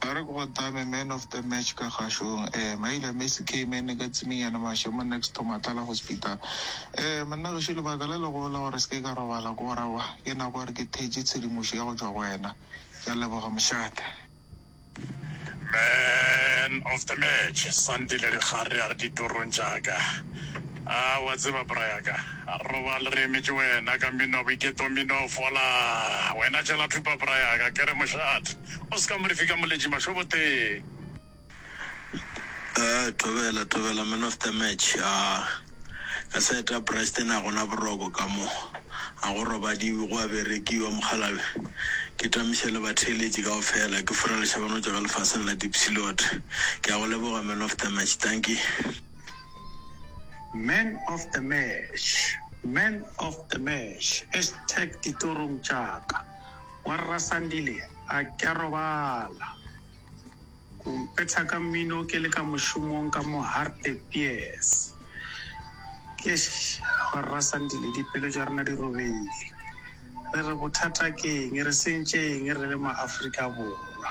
Ba re ke go tame man of the match ka kgašong eh Maila Messi K mane ka tsiminyane mashe mo next to Matlala Hospital eh Monna gešo lebaka le legolo la gore seke ka robala ke gore aowa ke nako gore ke thetše tshedimošo ya go tšwa go wena ke a leboga mošate. Man of the match Sandile Dikgare a re ditorong tša ka. A wa tseba, bra ya ka, a re robale re emetše wena ka mmino wa boiketo, mmino o fola. Wena tšela thupa, bra ya ka, ke re mošat, o se ka mo re fika moletši mašoboteng. Ee, thobela, thobela, man of the match. A ka sa eta Bryston a gona boroko ka mo, a go robadiwe, go a berekiwa, mokgalabje. Ke tamiša le batheeletši kaofela, ke furalešabanotšwa ka lefaseng la Diepsloot. Ke a go leboga, man of the match. Dankie. Man of the Mash, Man of the Mash, hashtag ditorong tša ka, wa Rra Sandile a ke a robala, o mpetha ka mmino ke le ka mošomong ka mo Hartebees. Eish, wa Rra Sandile dipelo tša rena di robegile, re re bothata ke eng, re sentše eng re le ma Afrika Borwa.